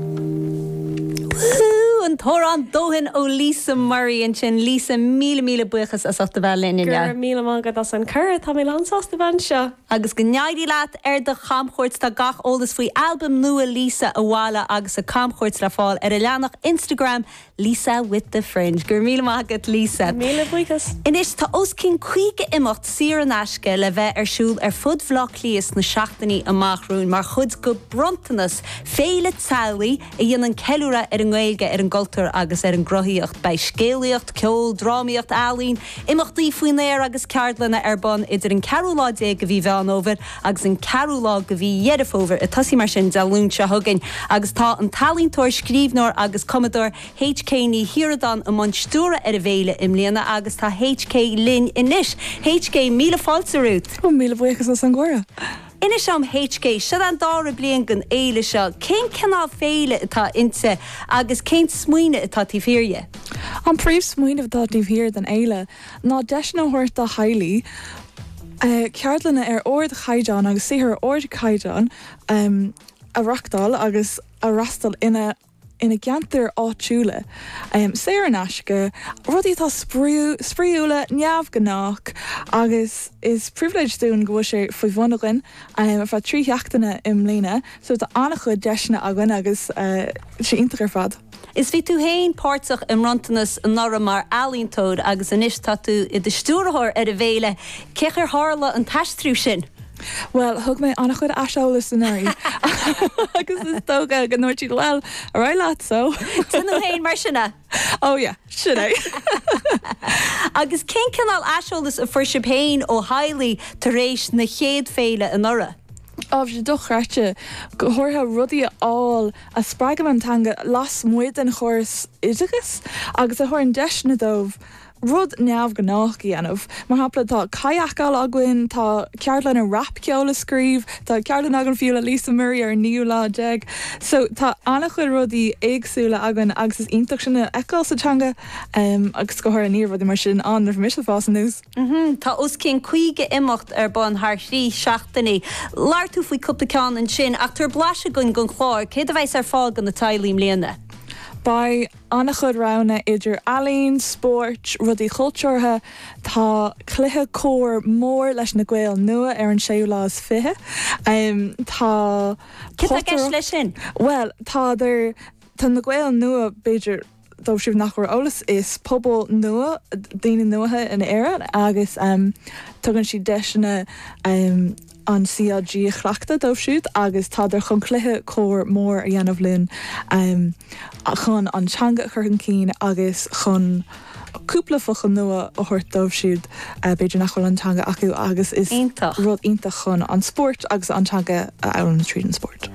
Woo-hoo! An t-amhrán Dóthain ó Lisa Murray ansin. Lisa, míle míle buíochas as ucht a bheith linn inniu. Go raibh míle maith agat as an gcuireadh, tá mé lán sásta bheith anseo! Agus go n-éirí leat ar do chamchuairt. Tá gach eolas faoi albam nua Lisa, Abhaile agus a camchuairt le fáil ar a leathanach Instagram Lisa with the fringe. Go raibh míle maith agat Lisa. Míle buíochas. Anois tá os cionn 50 imeacht saor in aisce le bheith ar siúl ar fud Bhaile Átha Cliath sna seachtainí amach romhainn mar chuid de Bhronntanas, féile teaghlaigh a dhéanann ceiliúradh ar an nGaeilge, ar an gcultúr agus ar an gcruthaíocht. Beidh scéalaíocht, ceol, drámaíocht, ealaín, imeachtaí faoin aer agus ceardlanna ar bun idir an ceathrú lá déag de mhí Mheán Fómhair agus an ceathrú lá de mhí Dheireadh Fómhair ag tosaí mar sin Dé Luain seo chugainn agus tá an t-ealaíontóir, scríbhneoir agus cumadóir HK Ní Shíoradáin i mbun stiúradh ar an bhféile i mbliana agus tá HK linn anois. HK, míle fáilte romhat. Ó, míle buíochas as an gcuireadh. Inis dom, HK, seo an dara bliain den fhéile seo, cén cineál féile atá inti agus cén smaoineamh atá taobh thiar dhe? An príomh-smaoineamh atá taobh thiar den fhéile ná deiseanna a thabhairt do theaghlaigh ceardlanna ar ardchaighdeán agus saothar ar ardchaighdeán a reachtáil agus a fhreastal ina gceantair áitiúla, saor in aisce, rudaí atá spraíúla, neamhghnách agus is pribhléid dúinn go bhfuil sé ar bun againn ar feadh trí sheachtaine i mbliana. So tá an-chuid deiseanna againn agus sé iontach ar fad. Is bhí tú féin páirteach i mBronntanas anuraidh mar ealaíontóir agus anois tá tú i do stiúrthóir ar an bhféile. Cén chaoi ar tharla an t-aistriú sin? Bhuel, thug mé an-chuid aiseolais anuraidh agus is dócha go ndúirt siad, bhuel, ar aghaidh leat, so. Déan tú féin mar sin é. Oh yeah, sin é. Agus cén cineál aiseolais a fuair sibh féin ó theaghlaigh tar éis na chéad féile anuraidh? Ó, bhí sé dochreidte, go háirithe rudaí a fháil a spreagann an teanga lasmuigh den chóras oideachais agus a thugann deiseanna dóibh rud neamhghnách a dhéanamh. Mar shampla, tá cadhcáil againn, tá ceardlann ar rapcheol a scríobh, tá ceardlann againn fiú le Lisa Murray ar an naoú lá déag. So, tá an-chuid rudaí éagsúla againn agus is iontach sin a fheiceáil sa teanga, agus go háirithe ní raibh rudaí mar sin ann nuair a bhí mise ag fás aníos. Tá os cionn 50 imeacht ar bun thar thrí seachtainí. Labhair tú faoi chúpla ceann ansin ach tabhair blaiseadh dhúinn den chlár, céard a bheas ar fáil do na teaghlaigh i mbliana? Beidh an-chuid roghanna idir ealaín, spóirt, rudaí cultúrtha, tá cluiche corr mór leis na Gaeil Nua ar an séú lá is fiche, tá Céard tá i gceist leis potaireacht, sin? bhuel, tá, tá na Gaeil Nua b'fhéidir, dóibh siúd nach bhfuair eolas, is pobal nua daoine nua in Éirinn agus tugann siad deiseanna an CLG a chleachtadh dóibh siúd agus tádar chun cluiche comhair mór a dhéanamh linn chun an teanga a chur chun cinn agus chun cúpla focal nua a thabhairt dóibh siúd b'fhéidir nach bhfuil an teanga acu agus is rud iontach chun an spórt agus an teanga a fhoghlaim tríd an spórt.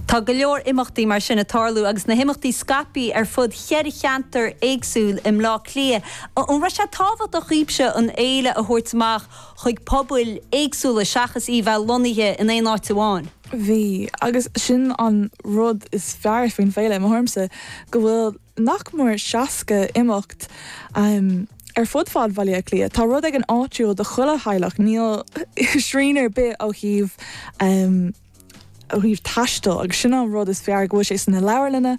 Tá go leor imeachtaí mar sin ag tarlú agus na himeachtaí scaipthe ar fud cheithre cheantar éagsúil i mBleá Cliath. An raibh sé tábhachtach daoibhse an fhéile a thabhairt amach chuig pobail éagsúla seachas í bheith lonnaithe in aon áit amháin? Bhí, agus sin an rud is fearr faoin bhféile, i mo thuairimse, go bhfuil nach mór 60 imeacht ar fud fad Bhaile Átha Cliath. Tá rud éigin áitiúil do chuile theaghlach, níl srian ar bith ó thaobh. thaobh taistil agus sin an rud is fearr go bhfuil sé sna leabharlanna.